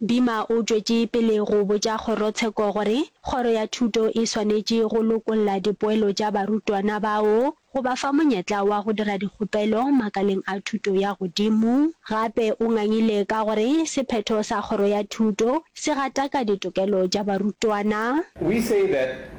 Dima o tšwetše pele go botša kgorotsheko gore kgoro ya thuto e swanetše go lokolla dipoelo tša barutwana bao go ba fa monyetla wa go dira dikgopelo makaleng a thuto ya godimo. Gape o ngangile ka gore sephetho sa kgoro ya thuto se gataka ditokelo tša barutwana. We say that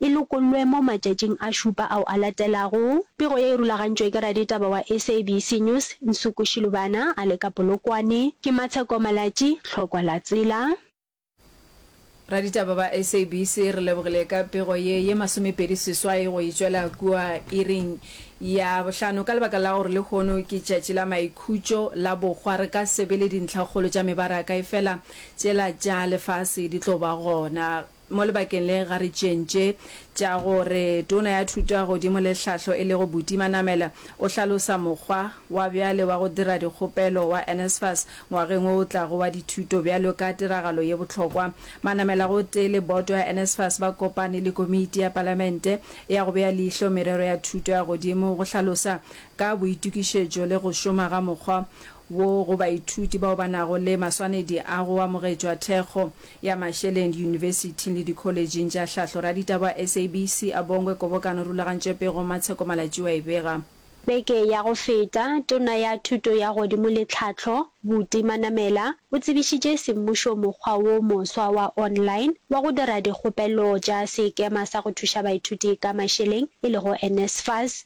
e lokollwe mo matšatšing a šupa ao a latelago. Pego ye e rulagantšwe ke raditaba wa SABC News, Nsuku Shilubana, a le ka Polokwane. Ke Matsheko Malatji, Tlhokwa la Tsela. Raditaba ba SABC re lebogile ka pego ye ye masomepedi seswai go e tšwela kua iring ya bohlano ka lebaka la gore lehono ke tšatši la maikhutšo la bohwa re ka se be le dintlhakgolo tša mebaraka efela tšela tša lefase di tlo ba gona Mo lebakeng le ga re tšeeng tše tša gore Tona ya Thuto ya Godimo le Tlhahlo e lego Buti Manamela o hlalosa mokgwa wa bjale wa go dira dikgopelo wa NSFAS ngwageng wo o tlago wa dithuto bjalo ka tiragalo ye bohlokwa. Manamela gotee le boto ya NSFAS ba kopane le Komiti ya Palamente ya go Bea Leihlo Merero ya Thuto ya Godimo go hlalosa ka boitokišetšo le go šoma ga mokgwa wo go baithuti bao ba nago le maswanedi a go amogetšwa thekgo ya Mašeleng diyunibesithing le dikholejing tša hlahlo. Raditaba wa SABC a Bongwe Kobokano Rulagantšwe Pego Matsheko Malatšiu a e bega. Beke ya go feta, Tona ya Thuto ya Godimo le Tlhahlo, Buti Manamela, o tsebišitše semmušo mokgwa wo moswa wa online wa go dira dikgopelo tša Sekema sa go Thuša Baithuti ka Mašeleng e lego NSFAS.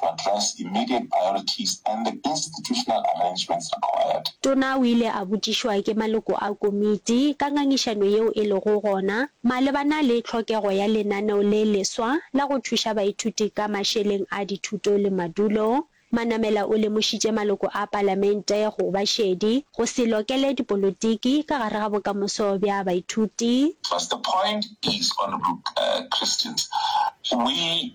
to address immediate priorities and the institutional arrangements required. Tona o ile a botšišwa ke maloko a komiti ka ngangišano yeo e lego gona malebana le tlhokego ya lenaneo le leswa la go thuša baithuti ka mašeleng a dithuto le madulo. Manamela o lemošitše maloko a palamente go ba šedi go se lokele dipolotiki ka gare ga bokamoso bja baithuti. Plus the point is, Honourable Christians, we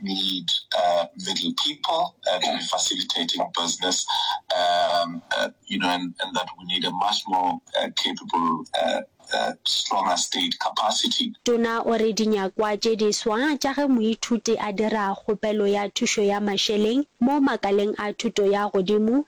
need middle people to be facilitating business you know and and that we need a much more capable stronger state capacity. Tona o re dinyakwa tše di swa tša ge moithuti a dira kgopelo ya thušo ya mašeleng mo makaleng a thuto ya godimo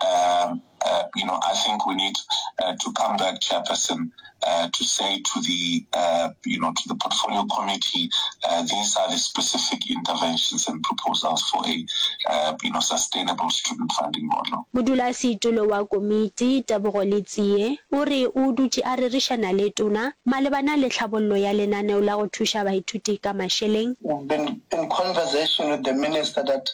um, uh, you know, I think we need uh, to come back, Chairperson, uh, to say to the, uh, you know, to the portfolio committee, uh, these are the specific interventions and proposals for a, uh, you know, sustainable student funding model. Modulasetulo wa komiti Tebogo Letsie o re o dutše a rerišana le tona malebana le tlhabollo ya lenaneo la go thuša baithuti ka mašeleng. We've been in conversation with the minister that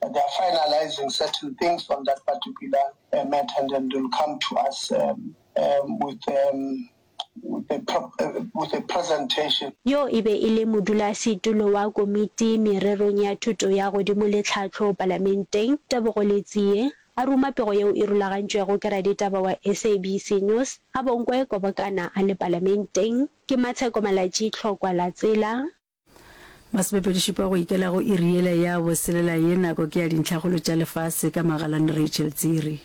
They are finalizing certain things on that particular matter and then they will come to us with with a presentation. Yo e be e le modulasetulo wa komiti mererong ya thuto ya godimo le tlhahlo Palamenteng, Tebogo Letsie, a ruma pego yeo e rulagantšwego ke raditaba wa SABC News gabonko e kobokana a le Palamenteng, ke Matsheko Malatji Tlhokwa-Latsela. Masomepedi-šupa go ikela go iri yela ya boselela ye nako ke ya dintlhakgolo tša lefase ka Magalane Rachel Tsiri.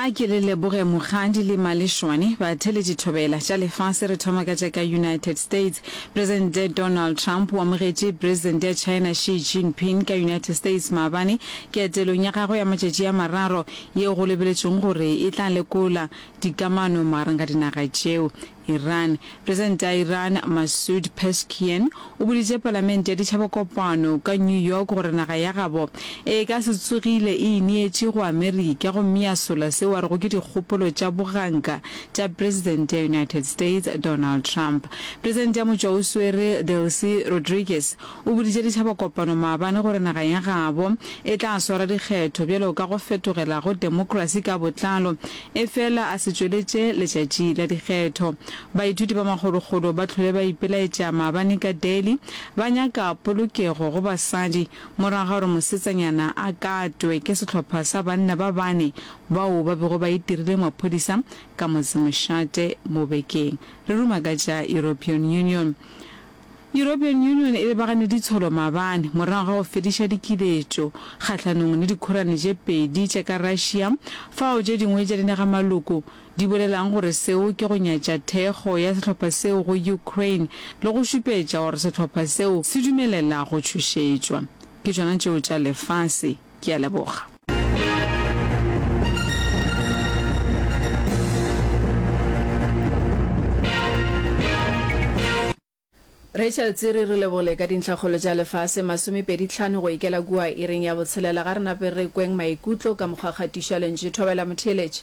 A ke le leboge Mokgadi le Malešwane batheletši thobela tša lefase re thoma ka tša ka United States. Presidente Donald Trump o amogetše Presidente ya China Xi Jinping ka United States maabane Ke etelong ya gagwe ya matšatši a mararo yeo go lebeletšwego gore e tla lekola dikamano magareng ga dinaga tšeo. Iran. Presidente ya Iran, Masoud Pezeshkian, o boditše palamente ya ditšhabakopano ka New York gore naga ya gabo e ka se tsogile e ineetše go Amerika gomme ya sola seo a rego ke dikgopolo tša boganka tša presidente ya United States, Donald Trump. Presidente ya motšwaoswere, Delcy Rodriguez, O boditše ditšhaba kopano maabane gore naga ya gabo e tla swara dikgetho bjalo ka go fetogela go demokrasi ka botlalo efela a se tšweletše letšatši la dikgetho. Baithuti ba makgolokgolo ba hlwele ba ipelaetša maabane ka Delhi ba nyaka polokego go basadi morago ga gore mosetsanyana a katwe ke sehlopha sa banna ba bane bao ba bego ba itirile maphodisa ka motsemošate mo bekeng. Re ruma ka tša European Union. European Union e lebagane ditsholo maabane morago ga go fediša dikiletšo kgahlanong le dikhorane tše pedi tše ka Russia fao tše dingwe tša dinagamaloko di bolelago gore seo ke go nyatša thekgo ya sehlopha seo go Ukraine le go šupetša gore sehlopha seo se dumelela go tšhošetšwa ke tšona tšeo tša lefase Ke a leboga. Rachel Tsiri re lebole ka dintlhakgolo tša lefase masomepedi tlhano go ikela kua iring ya botshelela ga re nape re kweng maikutlo ka mokgwakgatišo wa lentšu. Thobela Motheeletši.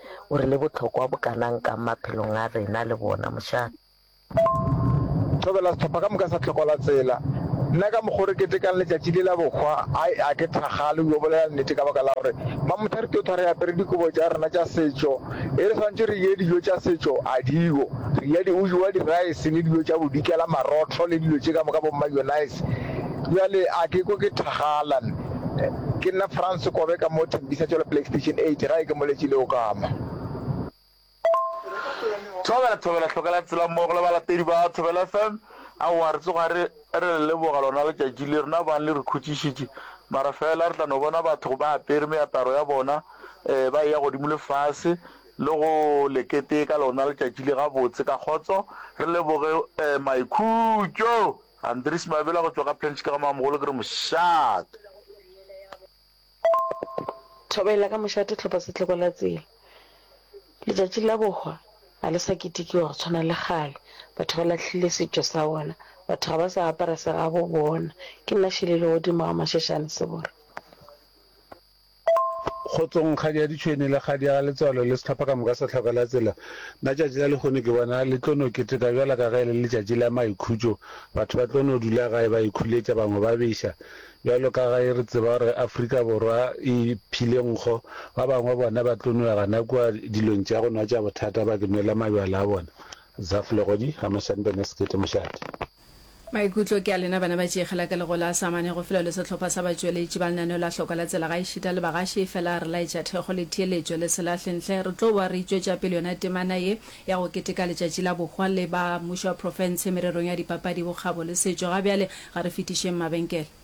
O re le bohlokwa bokanang kang maphelong a rena le bona, mošate. Thobela sehlopha ka moka sa Tlhoko la Tsela. Nna ka mokgo re ketekang letšatši le la bohwa, ai, a ke thakgale go yo bolela nnete ka baka la gore ba mothari tota re apere dikobo tša rena tša setšo, e re swantše re je dijo tša setšo, a diko. Re ja diujoa, diraese le dijo tša bodikela, marotho le dilo tše ka moka bo mmayonnaise. Bjale a ke kwe ke thakgala nna. Ke nna France Kobe ka mo Tembisa tšwela Playstation 8 gae ke moletši le Okama. Thobela thobela hlokela tsela mmogo le balatedi ba Thobela FM aowa re tsoga re re le leboga lona letšatši le rena bang le re khutšišitše mara fela re tla no bona batho ba apere meaparo ya bona um ba eya godimo le fase le go lekete ka lona letšatši le gabotse ka kgotso re leboge um maikhutšo Andries Mabela go tšwa ka Pench ka Gamamogolo ke re mošate. Thobela ka mošate tlhopha setlhoko la tsela. Letšatši la bohwa ga le sa ketikiwa go tshwana le kgale. Batho ba lahlile setšo sa bona. Batho ga ba sa apara segabo bona. Ke nna Shele Legodimo ga Mashashane Sebora. Kgotsong Kgadi ya Ditšhwene le Kgadi ya Galetswalo le sehlopha ka moka sa Tlhoka la Tsela. Nna tšatši la lehono ke bona le tlo no keteka bjalo ka ge e le letšatši la maikhutšo. Batho ba tlo no dula gae ba ikhuletša, bangwe ba beša. Bjalo ka ge re tseba gore Afrika Borwa e phile nkgo, ba bangwe bona ba tlo no ya gana kua dilong tša go nwa tša bothata ba ke nwela mabjala a bona. Zaf Legodi, Hamashani Bene Sekete Mošate. Maikutlo ke a lena bana ba Tšeegela ke lego la sa mane go felo le sehlopha sa batšweletši ba lenaneo la Hloko la Tsela gaešita le bagaši efela re laetša thekgo le theeletšo le se lahle ntle re tlo boa re itšwetša pele yona temana ye ya go keteka letšatši la bohwa le ba Mmušo wa Profense mererong ya dipapadi bokgabo le setšo ga bjale ga re fetišeng mabenkele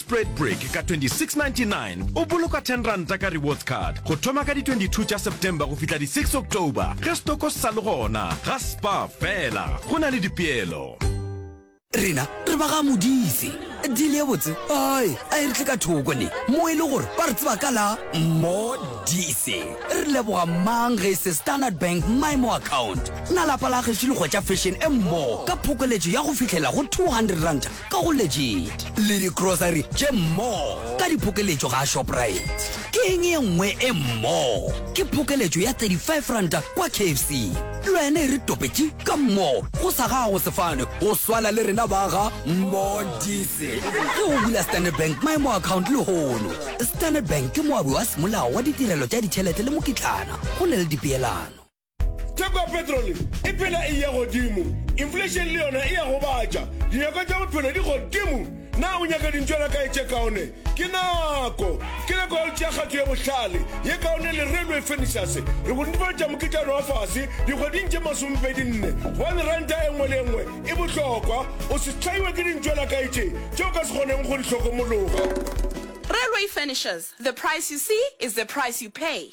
Spread Break ka 2699 o boloka 10 ranta ka rewards card go thoma ka di 22 tša September go fihla di 6 October ge stoko se sa le gona ga spa fela go na le dipeelo. Rena re ba ga modise dile ye botse ai a e re tle ka thoko ne mo e le gore ba re tseba ka la modise re leboga mang ge e se standard bank mymo account na lapa la gešo le gotša fashion e mmogo ka phokoletšo ya go fitlhela go 200 ranta ka go legit le di grocery tše more ka diphokeletšo ga Shoprite. Ke eng ye nngwe e more? Ke phokeletšo ya 35 ranta kwa KFC. Lwena e re topetše ka more go sa gago sefane go swala le rena ba ga More Diesel. Ge o bula Standard Bank My More account lehono. Standard Bank ke moabi wa semolao wa ditirelo tša ditšhelete le mokitlana go na le dipeelano. Theko ya petrole e phela e ya godimo, inflation le yona e a gobatša, dinyakwa tša bophelo di godimo. Na o nyaka dintšwana kae tše kaone? Ke nako! Ke nako ya go tšea kgato ye bohlale, ye kaone le Railway Furnishers. Re go netefaletša moketšana wa fase dikgweding tše masomepedi nne, gobane ranta e nngwe le e nngwe e bohlokwa. O se hlaiwe ke dintšwana kae tše tše o ka se kgoneng go di hlokomologa. Railway Furnishers, the price you see is the price you pay.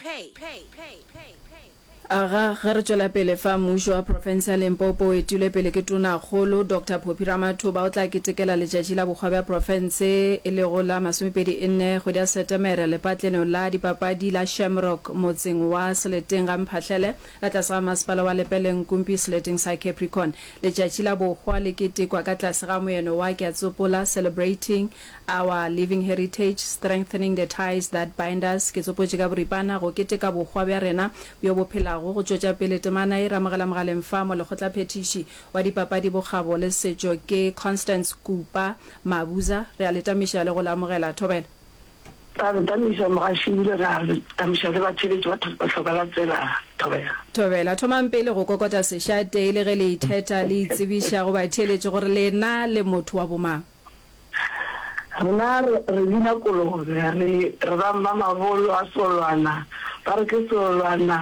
Aga ge re tšwela pele fa Mmušo wa Profense ya Limpopo o etilwe pele ke Tonakgolo Doctor Phophi Ramathuba o tla ketekela Letšatši la Bokgwa bja Profense e lego la masomepedi e nne kgwedi ya Setemere lepatleneo la dipapadi la Shamrock motseng wa Seleteng ga Mphahlele ka tlase ga Masepala wa Lepeleng-Nkumpi seleteng sa Capricorn. Letšatši la Bokgwa le ketekwa ka tlase ga moeno wa Ke a Tsopola Celebrating Our Living Heritage, Strengthening the Ties That Bind Us, ke tsopotše ka boripana go keteka bohwa bja rena bjo bo phelago, go tšwetša pele temana ye re amogela mogaleng fa mo Lekgotlaphethiši wa Dipapadi, Bokgabo le Setšo ke Constance Kupa Mabuza. Re a le tamiša le go le amogela. Thobela. Ra le tamiša mogaši ebile re a le tamiša le batheeletši ba Hlokwa la Tsela. Thobela. Thobela. Thomang pele go kokota sešate e le ge le ithetha le itsebiša go batheeletši gore lena le motho wa bomang. Rena re re bina kolobe, re re ba mmamabolo a Seolwana, ba re ke Seolwana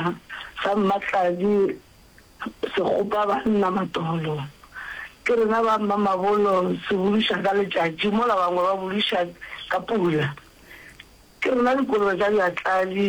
sa Mmatladi se kgopa banna matolo. Ke rena ba mmamabolo se buduša ka letšatši mola bangwe ba buduša ka pula. Ke rena dikolobe tša Bjatladi.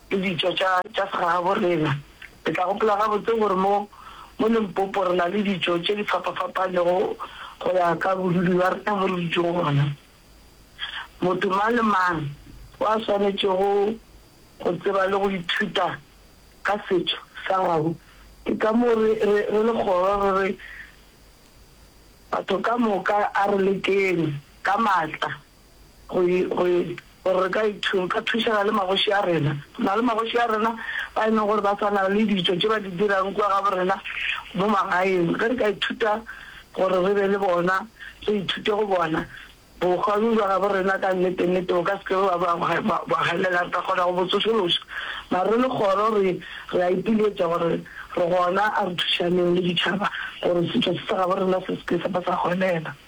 le ditšo tša tša segagaborena. Le tla gopola gabotse gore mo mo Limpopo re na le ditšo tše di fapafapanego go ya ka bodudi bja rena mo re dutšego gona. Motho mang le mang o a swanetšego go tseba le go ithuta ka setšo sa gabo. Ke ka moo re re re le kgoro re re batho ka moka a re lekeng ka matla Go e, go e, gore re ka e thu, ka thušana le magoši a rena. Go na le magoši a rena ba e leng gore ba sa na le ditšo tše ba di dirang kua gabo rena mo magaeng. Ge re ka ithuta gore re be le bona, re ithute go bona bohwa bjo bja gabo rena, ka nnete, nnete bo ka se ke bja ba bwa galela. Re ka kgona go bo tsošološa. Mare re le kgoro re, re a ipiletša gore re gona, a re thušaneng le ditšhaba gore setšo se sa gabo rena se se ke sa ba sa hwelela.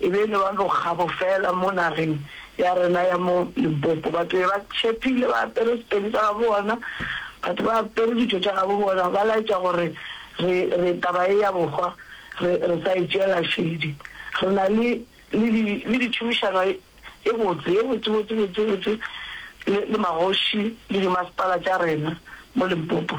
E be e le ba bokgabo fela mo nageng ya rena ya mo Limpopo. Batho be ba tšhepile, ba apere sepedi sa gabo bona, batho ba apere ditho tša gabo bona, ba laetša gore re, re, taba ye ya bohwa re, re sa e tšeela šedi. Re na le, le di, le ditšhomišano ye botse, ye botse, botse, botse, botse le, le magoši le dimasepala tša rena mo Limpopo.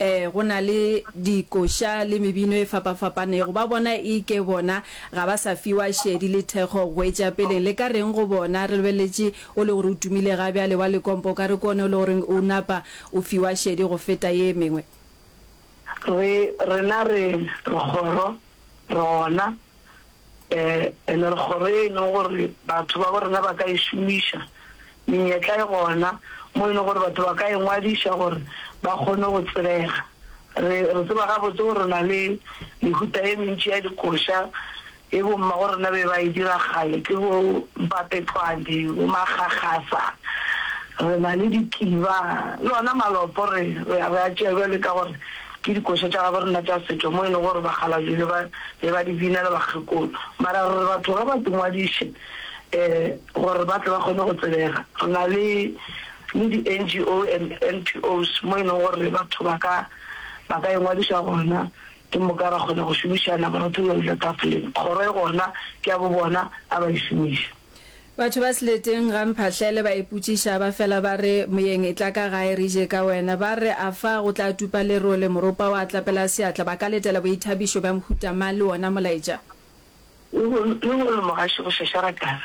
Ee, go na le dikoša le mebino e fapafapanego. Ba bona e ke bona ga ba sa fiwa šedi le thekgo goetšapeleng. Le ka reng go bona? Re lebeletše o le gore o tumile ga bjale wa lekompa, o ka re ke one o le gore o napa o fiwa šedi go feta ye mengwe. Re, rena re, re kgoro, re gona, Ee, le re kgoro ye e lego gore batho babo rena ba ka e šomiša, menyetla e gona mo e lego gore batho ba ka e ngwadiša gore ba kgone go tsebega. Re re tseba gabotse gore re na le mehuta e mentši ya dikoša e bommago rena be ba e dira kgale, ke bo mpapetlwane, bo makgakgasa, re na le dikiba le ona malopo. Re re a tšea bjale ka gore. Ke dikoša tša gabo rena tša setšo mo e lego gore bakgalabje be ba be ba di bina le bakgekolo. Mara gore batho ge ba di ngwadiše um gore ba tle ba kgone go tsebega re na le le di NGO and NPOs mo e leng gore batho ba ka ba ka engwadiša gona ke moka ra kgona go šomišana gore re thole dilo tafoleng. Kgoro e gona ke ya bo bona a ba e šomiša. Batho ba Seleteng ga Mphahlele ba ipotšiša ba fela ba re, Moyeng etla ka gae re je ka wena. Ba re, A fa go tla tupa lerole? Moropa wa tlapela seatla. Ba ka letela boithabišo bja mohuta mang le wona molaetša? Le go re, Mogaši go šešara kana?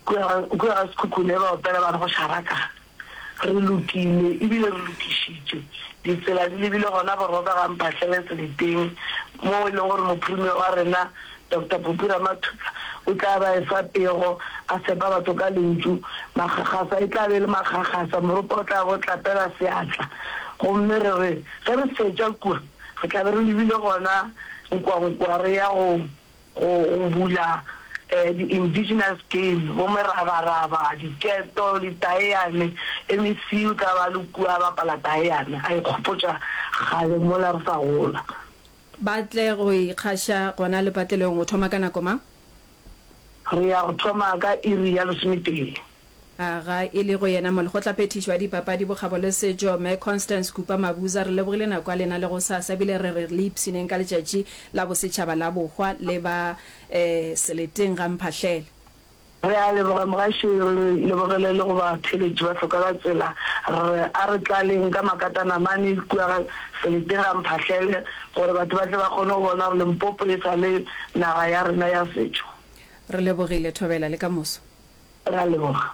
Kua ga Sekhukhune ba opela ba re, Go šara kana? Re lokile e bile re lokišitše. Ditsela di lebile gona Borobegang Phahlele Seleteng moo e lego gore Mophirime wa rena Doctor Popi Ramathuba o tla ba efa pego a fepa batho ka lentšu. Makgakgasa e tla be e le makgakgasa, moropa o tla be o tlapela seatla gomme re re ge re fetša kua re tla be re lebile gona Nkwankwa re ya go go bula di-indigenous game, bo merabaraba, diketo, ditaeane le mesiu tla ba le kua bapala taeane, a ikgopotša kgale mola re sa gola. Ba tle go ikgaša gona lepatlelong go thoma ka nako mang? Re ya go thoma ka iri ya lesometee. A ga e le go yena molekgotlaphethiši wa dipapadi, bokgabo le setšo, Mme Constance Kupa Mabuza, re lebogile nako ya lena le gosasa ebile re re le ipshineng ka letšatši la bosetšhaba la bohwa le ba seleteng ga mphahlele. Re a leboga mogašo, re lebogele le go batheeletši ba hloka la tsela, re re a re tlaleng ka makatana mane kua ga seleteng ga mphahlele gore batho ba tle ba kgone go bona gore Limpopo e sa le naga ya rena ya setšo. Re lebogile, Thobela, le ka moso. Ra leboga.